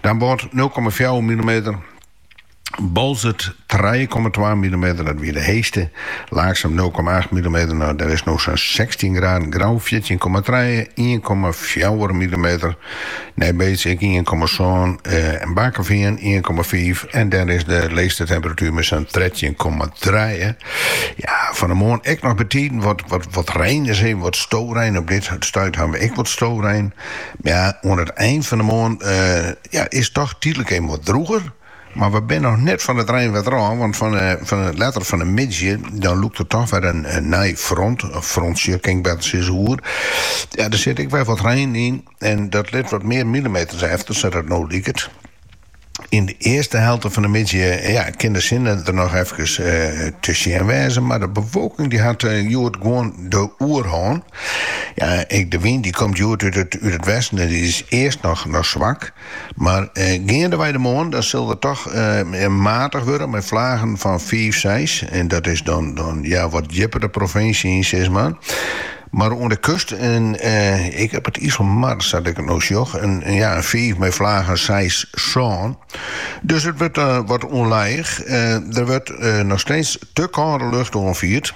Dan Wâldsein nul komma fjouwer millimeter. Boalsert trije komma twa millimeter, dat wie de heechste. Laaksum nul komma acht millimeter, nou der is no sa'n sechstjin graden. Grou fjirtjin komma trije, ien komma fjouwer millimeter. Nijbeets ek ien komma sân en Bakkeveen ien komma fiif. En der is de leechste temperatuer mei sa'n trettjin komma trije. Ja, fan de moarn ek noch betiden wat, wat, wat rein is, hé, wat storein, op dit stuit hawwe we ek wat storein. Ja, oan it ein fan de moarn ja, is toch tydlik even wat drûger. Mar we binne noch net fan it reinwaar ôf, want fan fan letter fan de middei dan lûkt der toch wer in nij front, of frontsje kin ik better sizze, oer. Ja, der sit ek wer wat rein yn en dat lit wat mear milimeters efter, sadat it no liket. Yn de earste helte fan de middei ja, kin de sinne der noch efkes te sjen wêze, mar de bewolking dy hat hjoed gewoan de oerhân. Ja, ek de wyn dy komt hjoed út it út it westen en dy is earst noch noch swak, mar geandewei de moarn dan sil er toch matich wurde mei flagen fan fiif, seis en dat is dan dan ja wat djipper de provinsje yn sis mar. Mar oan de kust en ek op it Iselmar, sa't ik it no sjoch, in fiif mei flagen seis sân. Dus it wurdt wat ûnlijch. Der wurdt noch steeds te kâlde lucht oanfierd,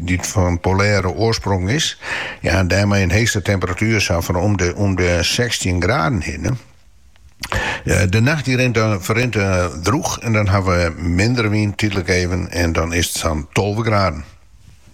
dy't fan polêre oarsprong is, en dêrmei in heechste temperatuer sa fan om 'e sechstjin graden hinne. De nacht dy ferrint drûch en dan hawwe we minder wyn, tydlik even, en dan is it sa'n tolve graden.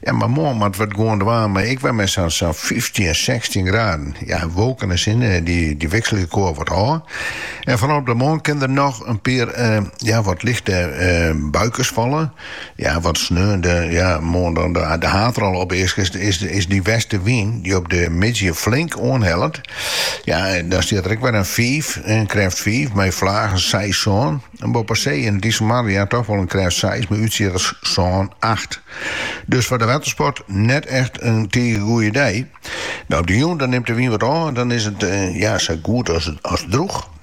Ja, mar moarn moat we it gewoan dwaan mei ek wer mei sa'n sa'n fyftjin, sechstjin graden. Ja, wolken en sin, dy wikselje elkoar wat ôf. En foaral op de moarn kinne der noch in pear, ja, wat lichte buikens falle. Ja, wat sneon de, ja, moarn dan de haadrol opeasket, is de westewyn dy't op de middei flink oanhellet. Ja, dan stiet der ek wer in fiif, in krêft fiif, mei flagen seis sân. En boppe see en it Iselmar ja toch wol in krêft seis, mei útsjitters sân acht. Dus foar de wettersport net echt in tige goede dei. Op de jûn nimt de wyn wat ôf en dan is it ja, sa goed as drûch.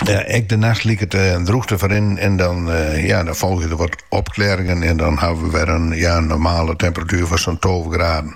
Ek de nacht liket eh, drûch te ferrinnen en dan, eh, ja, dan folgje der wat opkleringen en dan hawwe we wer in ja, normale temperatuur fan sa'n 12 graden.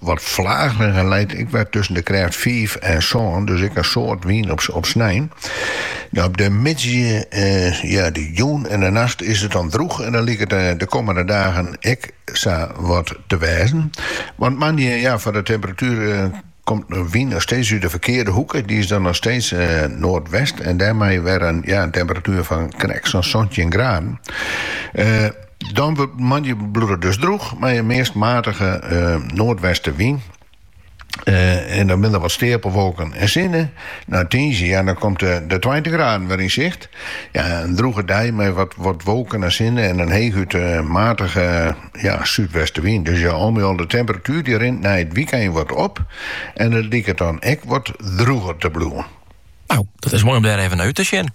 Wat flagerich leit it wer tusken de krêft fiif en sân, dus ek in soad wyn op snein. Op de middei, de jûn en de nacht is it dan drûch en dat liket de kommende dagen ek sa wat te wêzen. Want moandei, ja, foar de temperatuer komt de wyn noch steeds út de ferkearde hoeke, dy is dan noch steeds noardwest en dêrmei wer in temperatuer fan krekt sa'n santjin graden. Dan wurdt moandei bliuwt it dus drûch mei in meast matige noardwestewyn en dan binne der wat steapelwolken en sinne. Nei tiisdei ja, dan komt de tweintich graden wer yn sicht. Ja, in drûge dei mei wat, wat wolken en sinne en in heechút matige ja, súdwestewyn. Dus ja, al mei al de temperatuer die rint nei it wykein wat op. En it liket dan ek wat drûger te bliuwen. Nou, dat is moai om dêr even nei út te sjen.